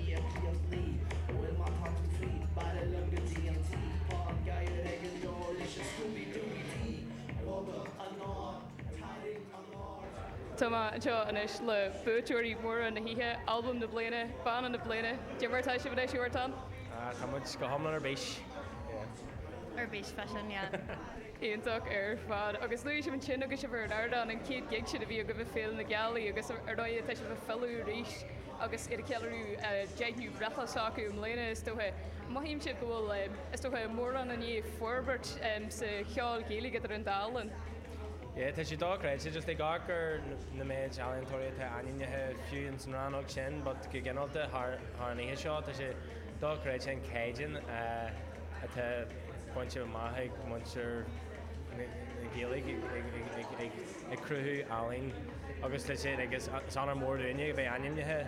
Íocaíocht Ní bhfuil mar atá tú fríd B'fhearra liom go dtí an tí Tá an gadhar ag an dó Leis an Scooby Dooby Dee Bogadh anáil Tarraingt anáirde Tá mé anseo anois le buaiteoirí móra na hoíche, Albam na Bliana, Banna na Bliana, Cad é mar atá sibh anois, Huartán? Ah, tá muid go hiomlán ar bís, yeah. Ar bís freisin, yeah. Iontach ar fad. Agus luaigh sibh ansin agus sibh ar an ardán, an chéad gig sin a bhí agaibh ag Féile na Gealaí agus ar ndóigh tá sibh ag filleadh arís. agus iad ag ceiliúradh a deichiú breithlá s'acu i mbliana, is dócha. Mothaímse go bhfuil, is dócha, mórán i ndiaidh forbairt sa cheol Gaeilge idir an dá linn. Yeah, tá sé dochreidte, just ag amharc ar na méid ealaíontóirí atá ainmnithe, fiú ins an rannóg sin, but go ginearálta thar an oíche seo, tá sé dochreidte an caighdeán atá bainte amach ag muintir na Gaeilge. ag cruthú ealaín agus is honóir mór dúinne a bheith ainmnithe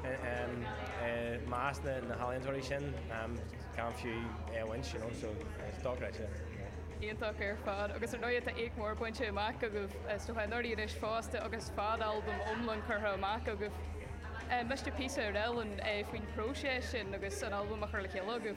i measc na healaíontóirí sin gan fiú é a bhaint, you know, so it's dochreidte. Iontach ar fad agus ar ndóigh tá éacht mór bainte amach agaibh is dócha anuraidh anois fosta agus fad albam iomlán curtha amach agaibh. Inis píosa ar éigin faoin phróiseas sin agus an albam á chur le chéile agaibh.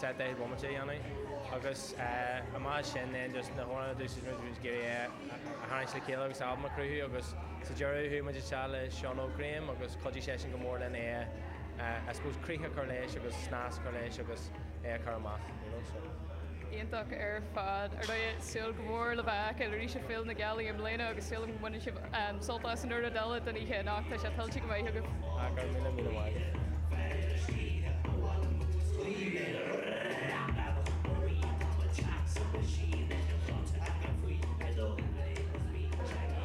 set de bhomaite a dhéanamh agus amach as sin then just na hamhráin a d'úsáid muid muid ag iarraidh é a tharraingt le chéile agus albam a chruthú agus sa deireadh chuaigh muid isteach le Seán Óg Graham agus chuidigh seisean go mór linn é a I suppose críoch a chur leis agus snas a chur leis agus é a chur amach you know so. iontach ar fad. Ar ndóigh súil go mór le bheith ag feiceáil arís ag Féile na Gealaí i mbliana agus súil agam go mbaine sibh Sult as an chuid eile den oíche anocht, tá sé tuillte go maith agaibh. Ah go raibh míle míle maith.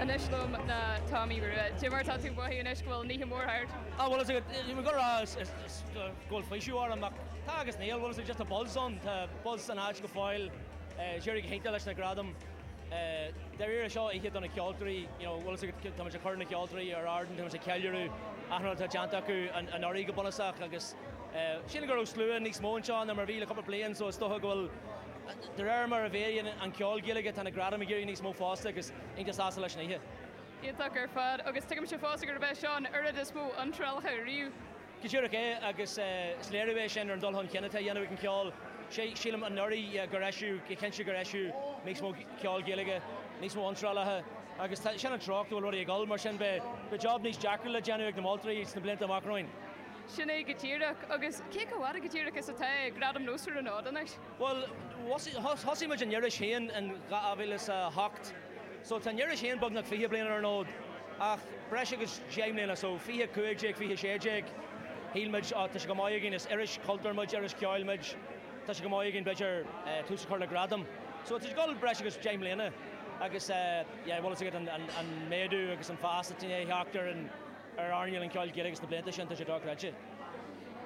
Anois liom tá Tomaí Rua. Cad é mar atá tú ag mothú anois go bhfuil an oíche mhór thart? Ah bhuel ba mhaith liom a rá go bhfuil faoiseamh orm ach tá agus níl, bhfuil a fhios agat just tá buzz ann, tá buzz san áit go fóill, d'éirigh go hiontach leis na gradaim. Dáiríre, seo oíche do na ceoltóirí, you know, bhfuil fhios agat, tá muid ag cur na ceoltóirí ar ardán, tá muid ag ceiliúradh achan rud atá déanta acu anuraidh go bunúsach agus sílim go raibh slua níos mó anseo ná mar a bhí le cúpla bliain so is dócha go bhfuil, de réir mar a mhéadaíonn an ceol Gaeilge, tá na gradaim ag éirí níos mó fosta agus tá mé iontach sásta leis an oíche. Iontach ar fad agus tuigimse fosta gurb é seo an uair is mó iontrálacha riamh. Go díreach é agus is léiriú é sin ar an dul chun cinn atá a dhéanamh ag an cheol. Sílim anuraidh gur eisíodh, go cinnte gur eisíodh níos mó ceol Gaeilge, níos mó iontrálacha agus sin an treocht go bhfuil rudaí ag dul mar sin beidh job níos deacra le déanamh ag na moltóirí sna blianta amach romhainn. Sin é go díreach. Agus cé chomh fada go díreach is atá Gradaim Nós ann anois? Bhuel, thosaigh muid an iris féin in 2008 so tá an iris féin beagnach fiche bliain ar an fhód ach breis agus deich mbliana so fiche a cúig déag, fiche a sé déag shíl muid tá sé chomh maith againn, is iris chultúir muid, iris cheoil muid, tá sé chomh maith againn b'fhéidir tús a chur le gradaim so tá sé ag dul breis agus deich mbliana agus yeah bhfuil fhios agat an méadú agus an fás atá i ndiaidh teacht ar an ar earnáil an cheoil Ghaelaigh sna blianta sin, tá sé dochreidte.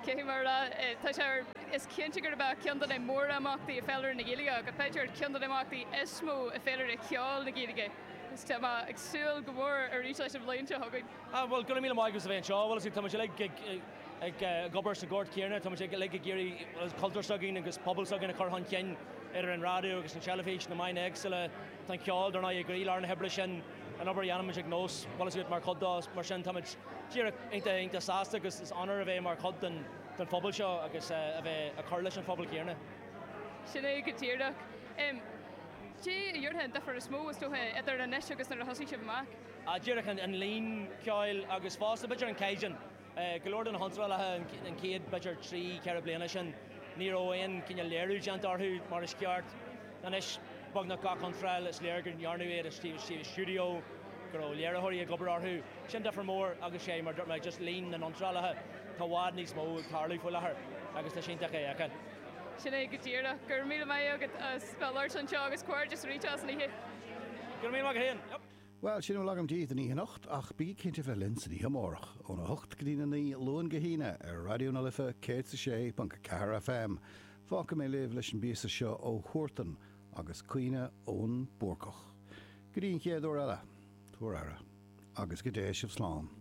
Cé hí Máire? Tá sé. Is cinnte gurb é ceann de na mórimeachtaí i bhféilire na Gaeilge, agus b'fhéidir ceann de na himeachtaí is mó i bhféilire cheoil na Gaeilge, agus tá mé ag súil go mór arís leis an bhliain seo chugainn. Bhuel, gura míle maith agaibh a bheith anseo. Bhuel, is é, tá muid uilig ag obair sa ghort céanna, tá muid uilig ag iarraidh, bhuel, an cultúr s'againn agus pobal s'againn a chur chun cinn idir an raidió agus an teilifís, na meáin éagsúla, tá an ceol, dár ndóigh, i gcroílár na hoibre sin. an obair a dhéanaimid ag NÓS, bhuel sé atá mar chuid dó, mar sin táimid díreach iontach, iontach sásta agus is onóir a bheith mar chuid den phobal seo agus a bheith ag cur leis an phobal chéanna. Sin é go díreach. Cad é an difear is mó, is dócha, idir anois agus nuair a thosaigh sibh amach? Díreach an líon ceoil agus fosta b'fhéidir an caighdeán. Go leor de na hiontrálacha an chéad, b'fhéidir, trí, ceithre bliana sin, ní raibh aon chineál léiriú déanta orthu mar is ceart. Anois, beagnach gach iontráil, is léir go ndearnadh iad i stiúideo, go raibh léiritheoirí ag obair orthu. Sin difear mór agus sé, mar a dúirt mé, just líon na n-iontrálacha, tá i bhfad níos mó ag tarlú faoi láthair agus tá sé iontach é a fheiceáil. Sin é go díreach. Go raibh míle maith agat as bheith labhairt anseo agus comhghairdeas arís as an oíche. Go raibh míle maith agat féin. Bhuel, sin a bhfuil agam daoibh don oíche anocht, ach bígí cinnte a bheith linn san oíche amárach, óna hocht go dtí a naoi, Luan go hAoine, ar Raidió na Life 106.4 FM. Fágfaidh mé sibh leis an bpíosa seo ó Huartan, agus Caoimhín an Búrcach. Go dtí an chéad uair eile, tugaigí aire, agus go dté sibh slán.